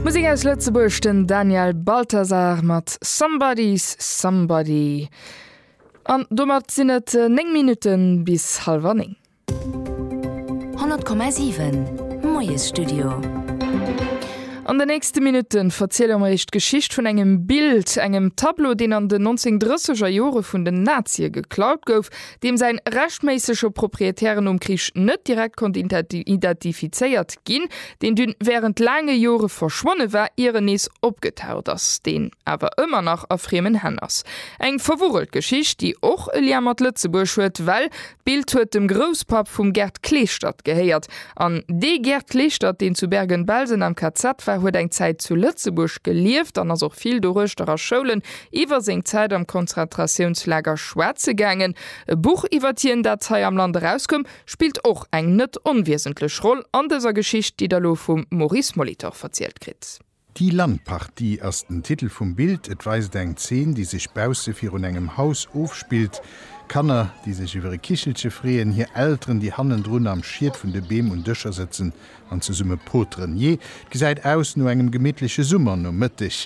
Musek aus Lëtzebuerg, den Daniel Balthasar mat Somebody's Somebody. An domat sinn et 9 Minutte bis hallwer 9. 100,7, Moiesstudio. An den nächste Minutte verziele mer iech d'Geschicht vun engem Bild, engem Tableau, deen an den 1930er Jore vun den Nazie geklaut gouf, deem säin rechtméissege Propriétaire nom Krich net direkt konnt identifizéiert ginn, deen dunn wärend laange Jore verschwonne war, ier en nees opgetaucht ass, deen awer ëmmer nach a friemen Hänn ass. Eng verwurrelt Geschicht, déi och e Lien mat Lëtzebuerg huet, well d'Bild huet dem Grousspapp vum Gerd Klestert gehéiert. An dee Gerd Klestert, deen zu Bergen-Belsen am KZ war, huet eng Zäit zu Lëtzebuerg gelieft an ass och vill doruechter a Schoulen, iwwer seng Zäit am Konzentratiounslager schwätze gaangen. E Buch iwwert hien, dat hei am Land erauskoum, spillt och eng net onwiesentlech Roll an dëser Geschicht, déi der elo vum Maurice Molitor verzielt kritt. Die Landpartie ass den Titel vum Bild. Et weist eng Zeen, déi sech bausse virun engem Haus ofspillt. Kanner, déi sech iwwer e Kichelche freeën, hir Elteren, déi hannendrun am Schiet vun de Beem un Dëscher sëtzen an zesumme poteren. Jee, et gesäit aus no engem gemittleche Summernomëtteg.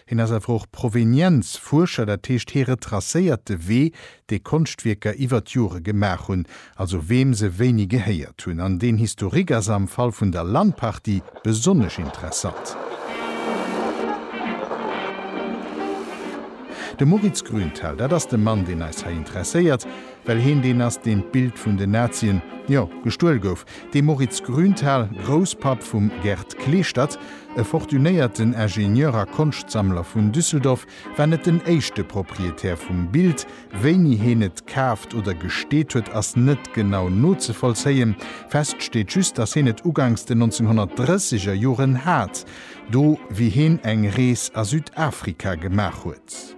Hien ass awer och Provenienzfuerscher, dat heescht hie retracéiert de Wee, dee Konschtwierker iwwer d'Jore gemaach hunn, also weem se wéini gehéiert hunn. An deen Historique ass am Fall vun der Landparty besonnesch interessant. De Moritz Grünthal, dat ass de Mann, deen eis hei interesséiert, well hien deen ass, deen d'Bild vun den Nazien, jo, gestuel gouf, De Moritz Grünthal, Grousspapp vum Gerd Kleeschtert, e fortunéierten Ingenieur a Konschtsammler vun Düsseldorf, war net den éischte Proprietär vum Bild. Wéini heen et kaaft oder gesteet huet, ass net genau nozevollzéien. Fest steet just, datt heen et ugangs den 1930 er Joren hat, do wéi heen eng Rees a Südafrika gemaach huet.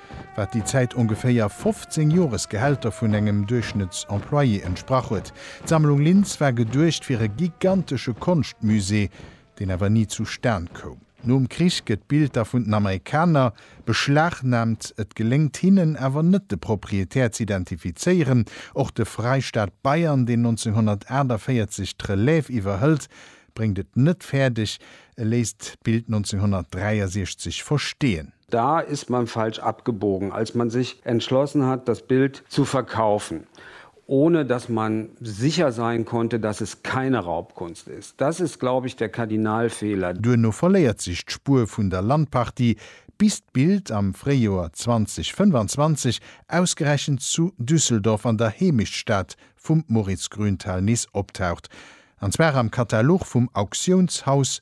wat déi Zäit ongeféier 15 Joresgehälter vun engem Duerchschnëttsemployé entsprach huet. D'Sammlung Linz war geduecht fir e gigantesche Konschtmusée, deen awer ni zu Stan koum. Nom Krich gëtt d'Bild da vun den Amerikaner beschlagnaamt, et geléngt hinnen awer net de Proprietär z'identifizéieren. Och de Freistaat Bayern, deen 1948 d'Relève iwwerhëlt, bréngt et net fäerdeg, e léisst d'Bild 1963 versteeën. Da ist man falsch abgebogen, als man sich entschlossen hat, das Bild zu verkaufen, ohne dass man sicher sein konnte, dass es keine Raubkunst ist. Das ist, glaube ich, der Kardinalfehler. Duerno verléiert sech d'Spuer vun der Landpartie, bis d'Bild am Fréijoer 2025 ausgerechent zu Düsseldorf an der Heemechtstad vum Moritz Grünthal nees optaucht, an zwar am Katalog vum Auktiounshaus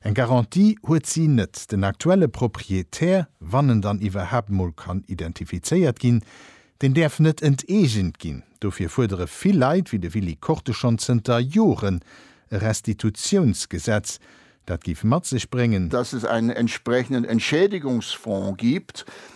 Eng Garantie huet si net. Den aktuelle Proprietär, wann en dann iwwerhaapt mol kann identifizéiert ginn, deen däerf net enteegent ginn. Dofir fuerdere vill Leit, wéi de Willy Korte schonn zënter Joren, e Restitutiounsgesetz, dat géif mat sech bréngen, dass es einen entsprechenden Entschädigungsfonds gibt,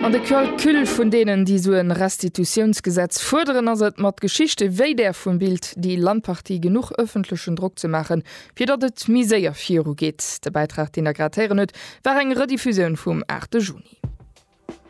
An de Calcul vun deenen, déi esou en Restitutiounsgesetz fuerderen, ass et mat Geschichte wéi där vum Bild Die Landpartie genuch öffentlechen Drock ze maachen, fir datt et méi séier virugeet. De Bäitrag, deen Der grad héieren hutt, war eng Rediffusioun vum 8 Juni.